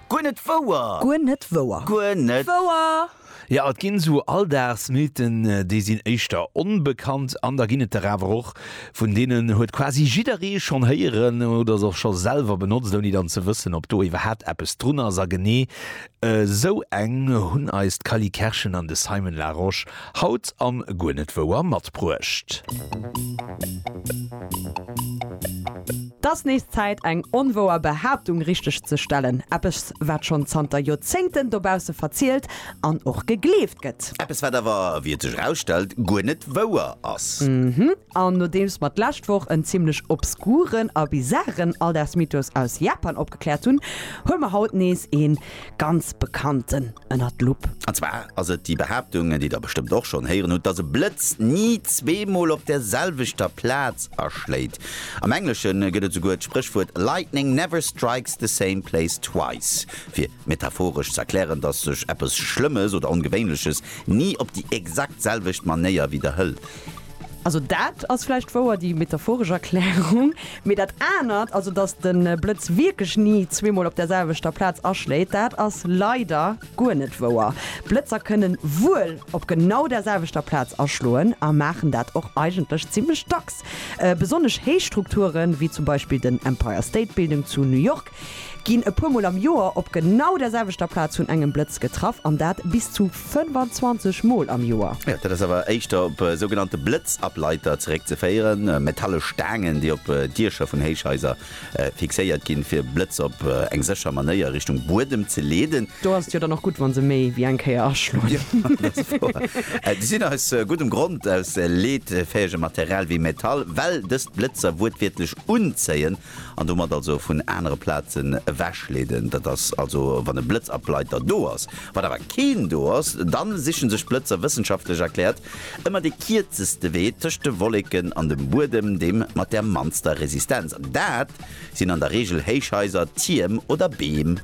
Guer net wouer! Guer net wouer! Guer net wouer! Jo, et ginn esou Alldagsmythen, déi sinn éischter onbekannt, an da ginn et der awer och, vun deenen huet quasi jidderee schonn héieren oder se och scho selwer benotzt, ouni dann ze wëssen, ob do iwwerhaapt eppes drun ass. A genee Esou eng hunn eis d'Cally Kerschen an de Simon Larosche haut am Guer net wouer matbruecht. T ass nees Zäit, eng onwouer Behaaptung richteg ze stellen. Eppes, wat schonn zanter Joerzéngten dobausse verzielt an och gegleeft gëtt. Eppes, wat awer, wéi et sech erausstellt, guer net wouer ass. An nodeems mer d'lescht Woch en zimlech obskuren a bizaren Alldagsmythos aus Japan opgekläert hunn, huele mer haut nees ee ganz bekannten ënner d'Lupp. An zwar ass et déi Behaaptung, déi der bestëmmt och schonn héieren hutt, dass e Blëtz ni zweemol op der selwechter Plaz aschléit. Am Englesche gëtt et souguer d'Spréchwuert Lightning never strikes the same place twice, fir metaphoresch ze erklären, dass sech eppes Schlëmmes oder Ongewéinleches ni op déi exakt selwecht Manéier widderhëlt. Also dat ass vläicht wouer, déi metaphoresch Erklärung. Mee dat anert, also datt de Blëtz wierklech ni zweemol op der selwechter Plaz aschléit, dat ass leider guer net wouer. Blëtzer kënnen wuel op genau der selwechter Plaz aschloen a maachen dat och eigentlech zimmlech dacks. Besonnesch héich Strukture wéi zum Beispill den Empire State Building zu New York Ginn e puer Mol am Joer op genau der selwechter Plaz vun engem Blëtz getraff, an dat bis zu 25 Mol am Joer. Jo, dat ass awer éischter op sougenannte Blëtzableiter zeréckzeféieren, metallesch Staangen, déi op Diecher vun Héichhaiser fixéiert ginn, fir Blëtz op eng sécher Manéier Richtung Buedem ze leeden. Do ass et jo dann och gutt, wa se méi wéi eng Kéier aschloen. Jo, dat ass wouer. Si sinn aus guddem Grond aus leetfäegem Material wéi Metall, well dëst d'Blëtzer wuertwiertlech unzéien. an domat also vun anere Plazen ewechleeden. Dat ass also wann e Blëtzableiter do ass. Wann awer keen do ass, dann sichen sech d'Blëtzer, wëssenschaftlech erkläert, ëmmer dee kierzeste Wee tëscht de Wolleken an dem Buedem, deem mat der mannster Resistenz. An dat sinn an der Reegel Héichhaiser, Tierm oder Beem.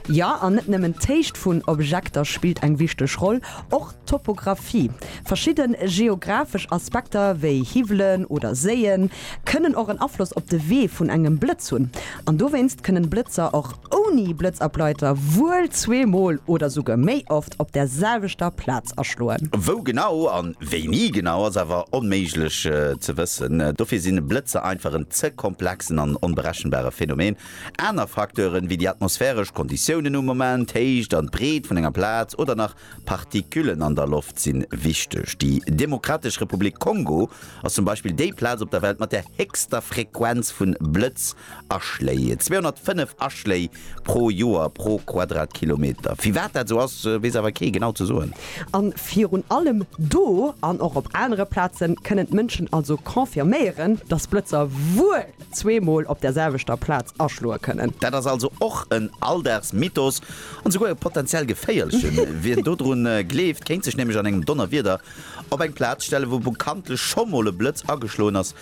Jo, an net nëmmen d'Héicht vun Objekter spillt eng wichteg Roll. Och Topographie, Verschidde geographesch Aspekter wéi Hiwwelen oder Séie kënnen och en Afloss op de Wee vun engem Blëtz hunn. An dowéinst kënnen Blëtzer och ouni Blëtzableiter wuel zweemol oder souguer méi oft op der selwechter Plaz aschloen. Wou genau an wéini genau ass awer onméiglech ze wëssen. Dofir sinn Blëtzer einfach en ze komplexen an onberechenbare Phänomen. Aner Facteuren wéi déi atmosphäresch Konditiounen um Moment, d'Héicht an d'Breet vun enger Plaz oder nach Partiküllen an der Loft sinn wichteg. Déi Demokratesch Republik Kongo ass zum Beispill déi Plaz op der Welt mat der héchster Frequenz vun Blëtz-Aschléi, 205 Aschléi pro Joer pro Quadratkilometer. Firwat dat esou ass, weess awer kee genau ze soen. An virun allem do, an och op anere Plazen, kënnen d'Mënschen also confirméieren, dass Blëtzer wuel zweemol op der selwechter Plaz aschloe kënnen. Dat ass also och en Alldagsmythos. An esouguer e potenziell geféierlechen. Wien dodrun gleeft, kéint sech nämlech an engem Donnerwieder op eng Plaz stellen, wou bekanntlech scho mol e Blëtz ageschloen ass,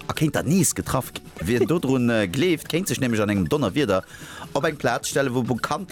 a kéint dann nees getraff ginn. Wien dodrun gleeft, kéint sech nämlech an engem Donnerwieder op eng Plaz stellen, wou bekanntlech.